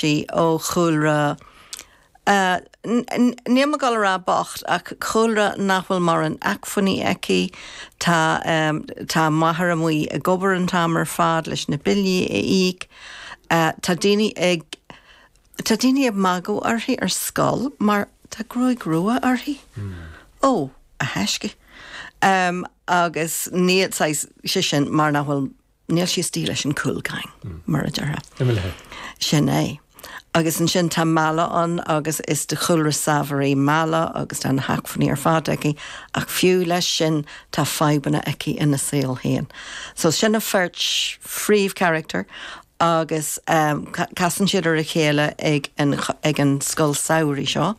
sí ó chúlra, níl mé ag dul a rá bocht, ach cúlra nach bhfuil mórán acmhainní aici. Tá a máthair amuigh ag obair an t-am ar fad leis na billí a íoc. Tá daoine ag tá daoine ag magadh uirthi ar scoil mar tá gruaig rua uirthi. Ó, a thaisce. Agus níl sí saghas sé sin mar nach bhfuil. Níl sí istigh leis an cool gang, mar a déarfá. Sin é. Agus ansin tá Mella ann agus is de chúlra saibhir í Mella agus tá na hacmhainní ar fad aici ach fiú leis sin tá fadhbanna aici ina saol féin. So sin an bheirt phríomhcharachtar agus eh casann siad ar a chéile ag an scoil samhraidh seo.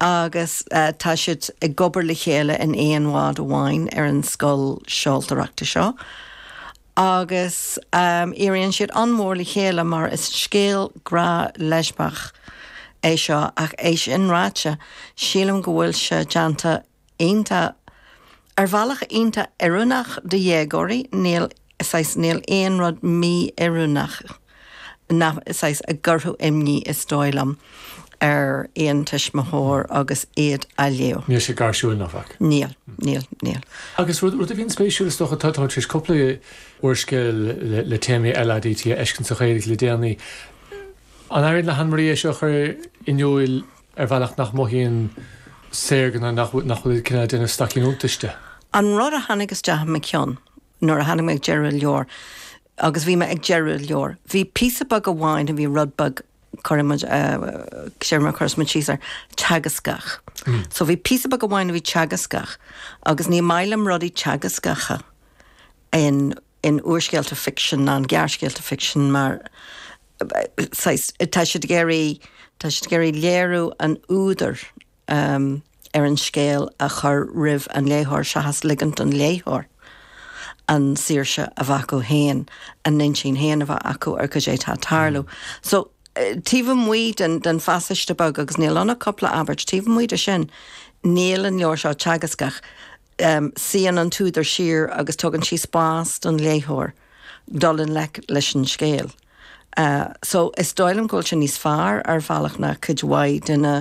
agus tá siad ag obair le chéile in aon bhád amháin ar an scoil seoltóireachta seo agus éiríonn siad an-mhór le chéile mar is scéal grá leispiach é seo ach é sin ráite sílim go bhfuil sé déanta iontach. Ar bhealach iontach oiriúnach do dhéagóirí, níl, saghas, níl aon rud mí-oiriúnach nach, saghas, a chuirfeadh imní is dóigh liom ar aon tuismitheoir agus iad á léamh. Níl sé gairsiúil ná faic. Níl, níl, níl. Agus rud, rud a bhíonn spéisiúil is dócha, tá, tá tar éis cúpla úrscéal le, le téamaí LADT a fheiscint sa Ghaeilge le déanaí. An éiríonn le hAnne Marie é seo a chur in iúil? ar bhealach nach mothaíonn sé saorga ná nach bhfuil cineál déanamh staicín iontais de. An rud a tháinig isteach i mo cheann nuair a tháinig mé ag deireadh leabhair agus bhí mé ag deireadh leabhair, bhí píosa beag amháin a bhí rud beag cad é mar a chuirfeas muid síos air, teagascach. So bhí píosa beag amháin a bhí teagascach agus ní maith liom rudaí teagascacha in. in úrscéalta ficsin ná in gearrscéalta ficsin mar saghas, tá siad ag iarraidh, tá siad ag iarraidh léamh an údair ar an scéal a chur roimh an léitheoir seachas ligint don léitheoir an saoirse a bheith acu féin, a n-intinn féin a bheith acu ar goidé atá ag tarlú. So, taobh amuigh den, den phasáiste beag, agus níl ann ach cúpla abairt, taobh amuigh de sin, níl an leabhar seo teagascach. Suíonn an t-údar siar agus tugann sí spás don léitheoir dul i ngleic leis an scéal. So, is dóigh liom go bhfuil sé níos fearr ar bhealach ná cuid mhaith de na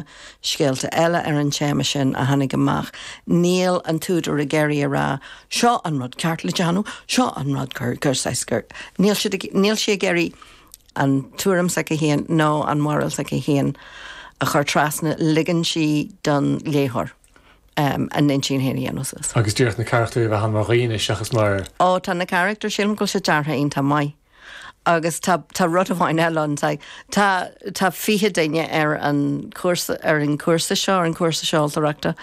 scéalta eile ar an téama sin a tháinig amach. Níl an t-údar ag iarraidh a rá, seo an rud ceart le déanamh, seo an rud gur, gur, saghas gur. Níl siad ag, níl sí ag iarraidh an tuairim s'aici féin nó an mhoráil s'aici féin a chur trasna, ligeann sí don léitheoir. a n-intinn féin a dhéanamh suas. Agus díreach na carachtair a bheith ann mar dhaoine seachas mar. Ó, tá na carachtair, sílim go bhfuil siad deartha iontach maith. Agus tá, tá rud amháin eile ann, tá, tá, tá fiche duine ar an chúrsa, ar an gcúrsa seo, ar an gcúrsa seoltóireachta,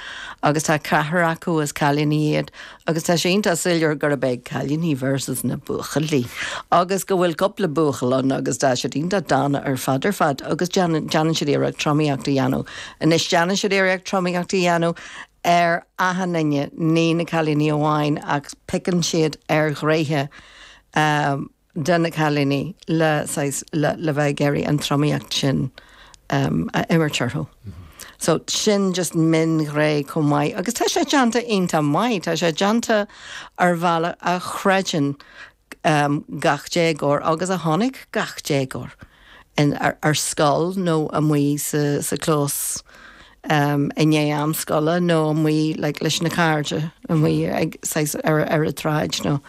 agus tá ceathrar acu, is cailíní iad, agus tá sé iontach soiléir gurb é cailíní versus na buachaillí agus go bhfuil cúpla buachaill ann agus tá siad iontach dána ar fad ar fad agus déanann, déanann siad iarracht tromaíocht a dhéanamh. Anois déanann siad iarracht tromaíocht a dhéanamh ar achan duine, ní na cailíní amháin ach pickeann siad ar ghréithe eh, de na cailíní le saghas le bheith ag iarraidh an tromaíocht sin a imirt orthu. So sin just mionghné chomh maith agus tá sé déanta iontach maith, tá sé déanta ar bhealach a chreideann gach déagóir agus a tháinig gach déagóir. ar scoil nó amuigh sa chlós i ndiaidh am scoile nó amuigh leis na cairde amuigh ar an tráigh nó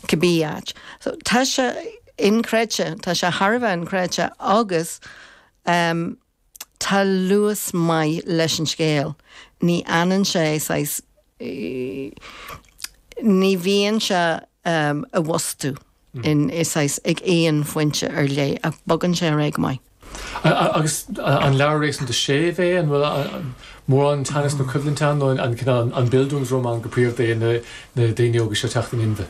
cibí áit. So tá sé inchreidte, tá sé thar a bheith inchreidte agus. Tá luas maith leis an scéal. Ní fhanann sé saghas, ní bhíonn sé i bhfostú in, saghas, ag aon phointe ar leith ach bogann sé ar aghaidh go maith. Agus an leabhar réasúnta séimh é? An bhfuil mórán teannais nó coimhlint ann nó an cineál, an Bildungsroman go príomha é na daoine óga seo ag teacht in inmhe?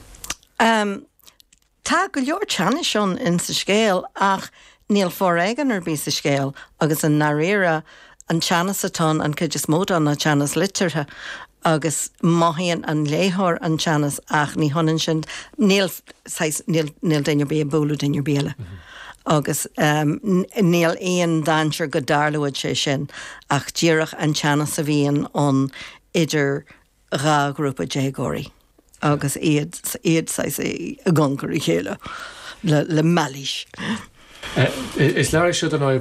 Tá go leor teannais ann in sa scéal ach níl foréigean ar bith sa scéal agus i ndáiríre an teannas atá ann, an chuid is mó de, ná teannas liteartha agus mothaíonn an léitheoir an teannas ach ní hionann sin, níl saghas, níl, níl duine ar bith ag bualadh duine ar bith eile agus níl aon dainséar go dtarlóidh sé sin ach díreach an teannas a bhíonn ann idir dhá ghrúpa déagóirí agus iad saghas i gcongar a chéile le mailís. Is leabhar é seo don.